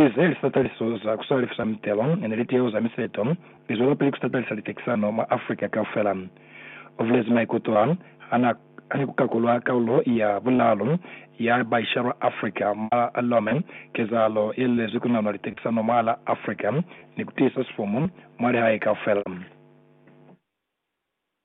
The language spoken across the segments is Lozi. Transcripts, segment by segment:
Israel sa taliso za ku salifisa mitelo ne litiho za miseto i zwelapili ku satalisa litekisano mwa Africa kaufela. U bulezi maikuto a hana ha ni ku kakulwa kaulo ya bulaalu ya baishalwa Africa mwa Lome, kezahalo ye lulezi ku nanwa litekisano mwahala Africa ni ku tiisa sifumu mwa lihae kaufela.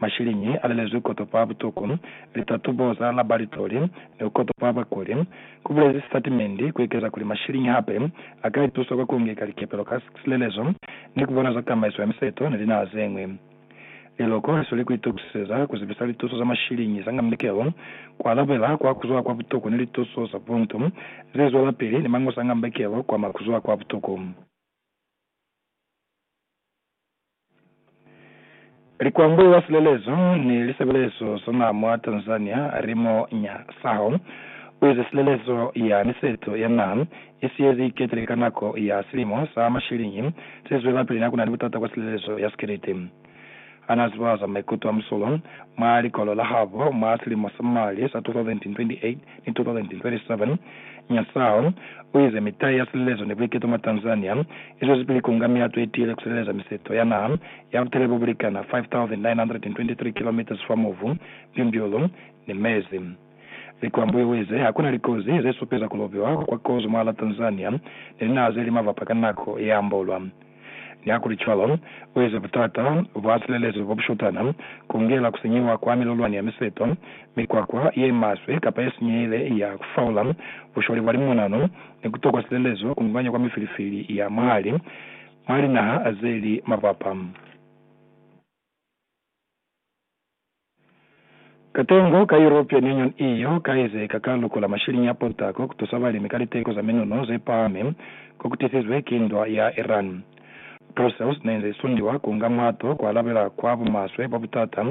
Mashilingi a lelezwi koto kwa butuku, litatubo za labalitori, ni ku koto kwa bakuli, ku bulezi sitatimendi, ku ekeza kuli mashilingi hape a ka itusa kwa ku ngeka likepelo ka silelezo ni ku bona za tamaiso ya miseto ni linaha ze ñwi. Liloko li sweli ku itokusiseza ku zibisa lituso za mashilingi za nga mikelo, ku alabela kwa ku zwa kwa butuku ni lituso za buntu ze zwelapili ni mangusa a nga mikelo kwa ma ku zwa kwa butuku. Likwambo la silelezo ni lisebelezo za naa mwa Tanzania limo nya saho, uize silelezo ya miseto ya naa i siyezi iketile ka nako ya silimo sa mashilingi se zwelapili na kunani butata kwa silelezo ya sikiliti. Hanaa zibaza maikuto a musolo mwa likolo la habo mwa silimo sa mali sa 2028, Itotoland 27, Nyasaho u ize mitai ya silelezo ni buiketo mwa Tanzania i zwezipili ku nga mihato i tiile ku sileleza miseto ya naha ya butele bo bu likana 5,923 kilometres fa movu, mbyumbyulu, ni mezi. Likwambuyo u ize ha ku na likozi ze supeza ku lobiwa kwa kozo mwahal'a Tanzania ni linaha ze li mavapa ka nako ye ambolwa. Nihakulicwalo, ueza butata bwa silelezo bobushutana, kungela kusenyiwa kwa milolwani ya miseto, mikwakwa yemaswe kapa yesinyehile ya kufaula, bushwali bwa limonano, ni kutokwa silelezo kunganya kwa mifilifili ya mwahali mwa linaha zeli mapapa. Katengo ka European Union, EU, kaezeka ka luko la mashiliñi a pontako kutusa balimi ka liteko za minuno zepahami kokutisizwe ki ndwa ya Iran. Brussels neinze isundiwa kuunga muhato kualabela kwa bumaswe bwa butata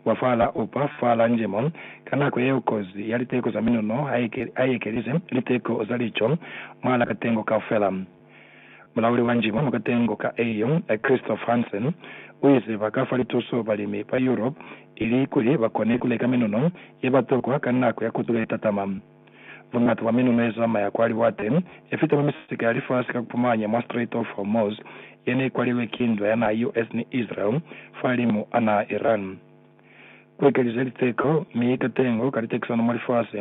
bwa fahala upa fahala njemo ka nako yeo kozi ya liteko za minuno haiyekelize liteko za lico mwahala katengo kaufela. Mulauli wa njimu mwa katengo ka EU, Christophe Hansen, uize ba ka fa lituso balimi ba Europe ili kuli ba kone kuleka minuno ye ba tokwa ka nako ya kotulo ye tatama. Buñata bwa minuno ye zamaya kwa liwate ye fita mwa misika ya lifasi ka kupumanya mwa Strait of Hormuz ye ne ikwalilwe ki ndwa ya naha ya US ni Israel fa limu a naha Iran. ku ekelize liteko mi ka tengo ka litekisano mwa lifasi,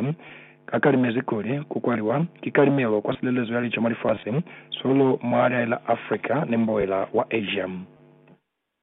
ka kalimezi kuli ku kwaliwa ki kalimelo kwa silelezo ya lico mwa lifasi, solo mwa liahe la Africa ni mboela wa Asia.